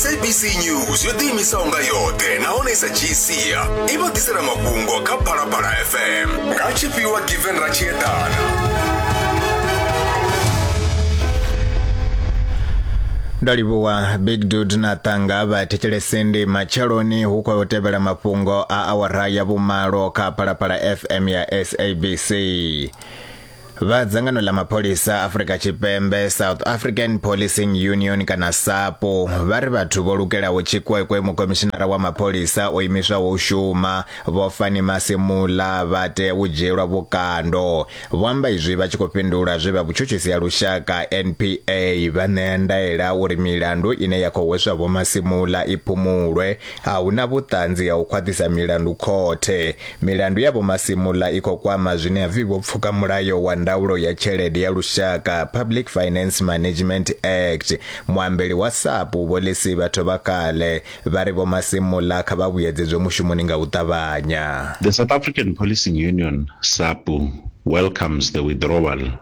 sabc news yo ḓiimisaho nga yoṱhe nahone sa gcia i vha ḓisela mafhungo kha phalaphala fm nga tshifhiwa given ra tshi eḓana ndo livhuwa big dud na tanga vha thetshelesende matsheloni hu khou tevhela mafhungo a awara ya vhumalo kha phalaphala fm ya sabc Vha dzangano ḽa mapholisa Afrika Tshipembe South African Policing Union kana SAPO vha ri vhathu vho lukelaho tshikwekwe mukomishinara wa mapholisa o imiswaho u shuma Vho Fani Masimula vha tea u dzhielwa vhukando. Vho amba izwi vha tshi khou fhindula zwe vha vhutshutshisi ha lushaka NPA vha ṋea ndaela uri milandu ine ya khou hweswa Vho Masimula i phumulwe A hu na vhuṱanzi ha u khwaṱhisa milandu khothe. Milandu ya Vho Masemola i khou kwama zwine ha pfi vho pfuka mulayo wa ndaulo ya tshelede ya lushaka, Public Finance Management Act. Muambeli wa SAPU Vho Lesiba Thobakgale vha ri Vho Masemola kha vha vhuyedzedzwe mushumoni nga u ṱavhanya. The South African Policing Union, SAPU, welcomes the withdrawal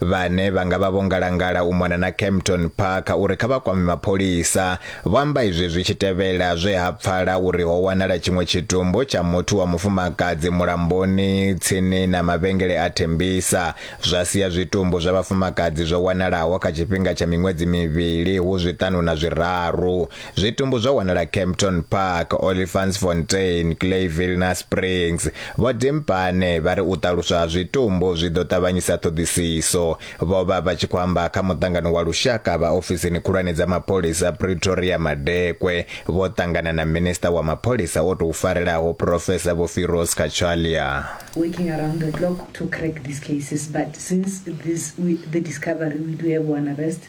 Vhane vha nga vha vho ngalangala u mona na Kempton Park uri kha vha kwame mapholisa, vho amba izwi zwi tshi tevhela zwe ha pfala uri ho wanala tshiṅwe tshitumbu tsha muthu wa mufumakadzi mulamboni tsini na mavhengele a Tembisa, zwa sia zwitumbu zwa vhafumakadzi zwo wanalaho kha tshifhinga tsha miṅwedzi mivhili hu zwiṱanu na zwiraru. Zwitumbu zwo wanala Kempton Park, Olifantsfontein, Clayville na Springs. Vho Dimpane vha ri u ṱaluswa ha zwitumbu zwi ḓo ṱavhanyisa ṱhoḓisiso. Vho vha vha tshi khou amba kha muṱangano wa lushaka vha ofisini khulwane dza mapholisa Pretoria madekwe vho ṱangana na minisiṱa wa mapholisa o tou farelaho Professor Vho Firoz Cachalia. working around the clock to crack these cases but since this we, the discovery we do have one arrest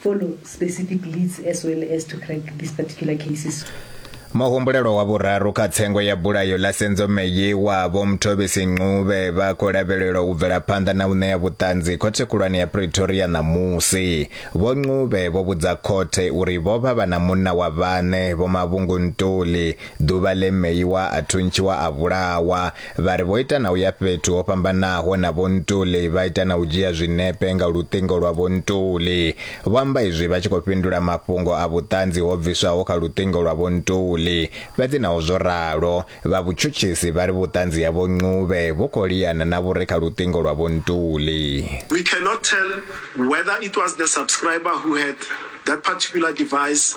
follow specific leads as well as to crack these particular cases. Muhumbulelwa wa vhuraru kha tsengo ya bulayo ḽa Senzo Meyiwa vho Mthobisi Ncube vha khou lavhelelwa u bvela phanḓa na u ṋea vhuṱanzi khothe khulwane ya Pretoria ṋamusi. Vho Ncube vho vhudza khothe uri vho vha vha na munna wa vhaṋe, Vho Mavhungu Ntuli, ḓuvha ḽe Meyiwa a thuntshiwa a vhulawa. Vha ri vho ita na u ya fhethu ho fhambanaho na Vho Ntuli vha ita na u dzhia zwinepe nga luṱingo lwa Vho Ntuli. Vho amba izwi vha tshi khou fhindula mafhungo a vhuṱanzi ho bviswaho kha luṱingo lwa Vho Ntuli. Fhedzi naho zwo ralo, vha vhutshutshisi vha ri vhuṱanzi ha Vho Ncube vhu khou liana na vhu re kha luṱingo lwa Vho Ntuli. We cannot tell whether it was the subscriber who had that particular device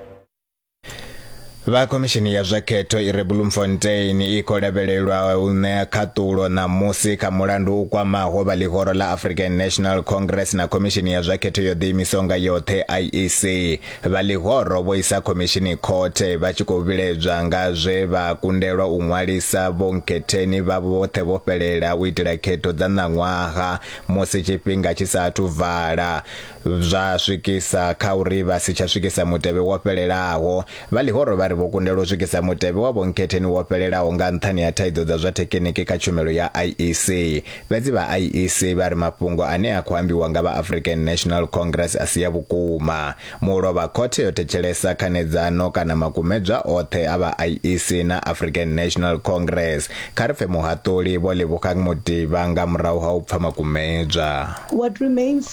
vha khomishini ya zwa khetho i re bloemfontein i khou lavhelelwa u ṋea khaṱulo ṋamusi kha mulandu u kwamaho vha ḽihoro ḽa african national congress na khomishini ya zwa khetho yo ḓiimisaho nga yoṱhe iec vha ḽihoro vho isa khomishini khothe vha tshi khou vhiledzwa nga zwe vha kundelwa u ṅwalisa vhonkhetheni vha vhoṱhe vho fhelela u itela khetho dza ṋaṅwaha musi tshifhinga tshi sa athu vala zwa swikisa kha uri vha si tsha swikisa mutevhe wo fhelelaho. Vha ḽihoro vha ri vho kundelwa u swikisa mutevhe wa vhonkhetheni wo fhelelaho nga nṱhani ha thaidzo dza zwa thekheniki kha tshumelo ya IEC. Fhedzi vha IEC vha ri mafhungo ane a khou ambiwa nga vha African National Congress a si a vhukuma. Mulovha khothe yo thetshelesa khanedzano kana makumedzwa oṱhe a vha IEC na African National Congress. Kha ri pfe muhaṱuli Vho Lebogang Modiba nga murahu ha u pfa makumedzwa. What remains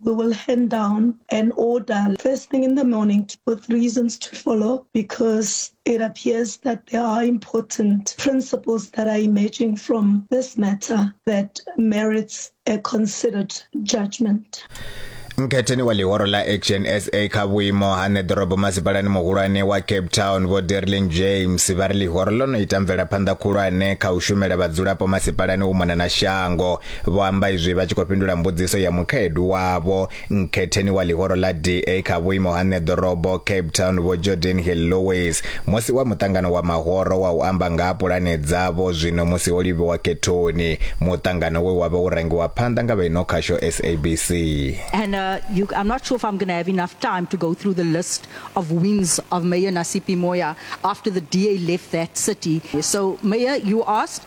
we will hand down an order first thing in the morning with reasons to follow because it appears that there are important principles that are emerging from this matter that merits a considered judgment. Mkhetheni wa ḽihoro ḽa Action SA kha vhuimo ha ṋeḓorobo masipalani muhulwane wa Cape Town Vho Derlin James vha ri ḽihoro ḽo no ita mvelaphanḓa khulwane kha u shumela vhadzulapo masipalani u mona na shango Vho amba izwi vha tshi khou fhindula mbudziso ya mukhaedu wavho nkhetheni wa ḽihoro ḽa DA kha vhuimo ha ṋeḓorobo Cape Town Vho Jordan Hill Lewis musi wa muṱangano wa mahoro wa u amba nga ha pulane dzavho zwino musi ho livhiwa khethoni, muṱangano we wa vha wo rangiwa phanḓa nga vha ino khasho SABC. And uh, you, I'm not sure if I'm going to have enough time to go through the list of wins of Mayor Nasipi Moya after the DA left that city. So, Mayor, you asked,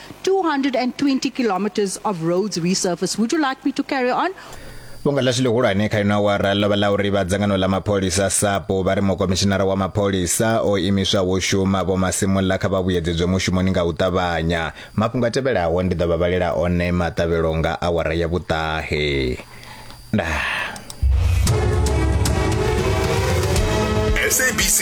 220 kilometers of roads resurfaced. Would you like me to carry on? fhungo ḽashu ḽihulwane kha ino awara ḽo vha ḽa uri vha dzangano ḽa mapholisa sapo vha ri mukomishinara wa mapholisa o imiswa wo shuma vho masimulla kha vha vhuyedzedzwe mushumoni nga u ṱavhanya mafhungo a tevhelaho ndi ḓo vha vhalela one maṱavhelo nga awara ya vhuṱahe ndaa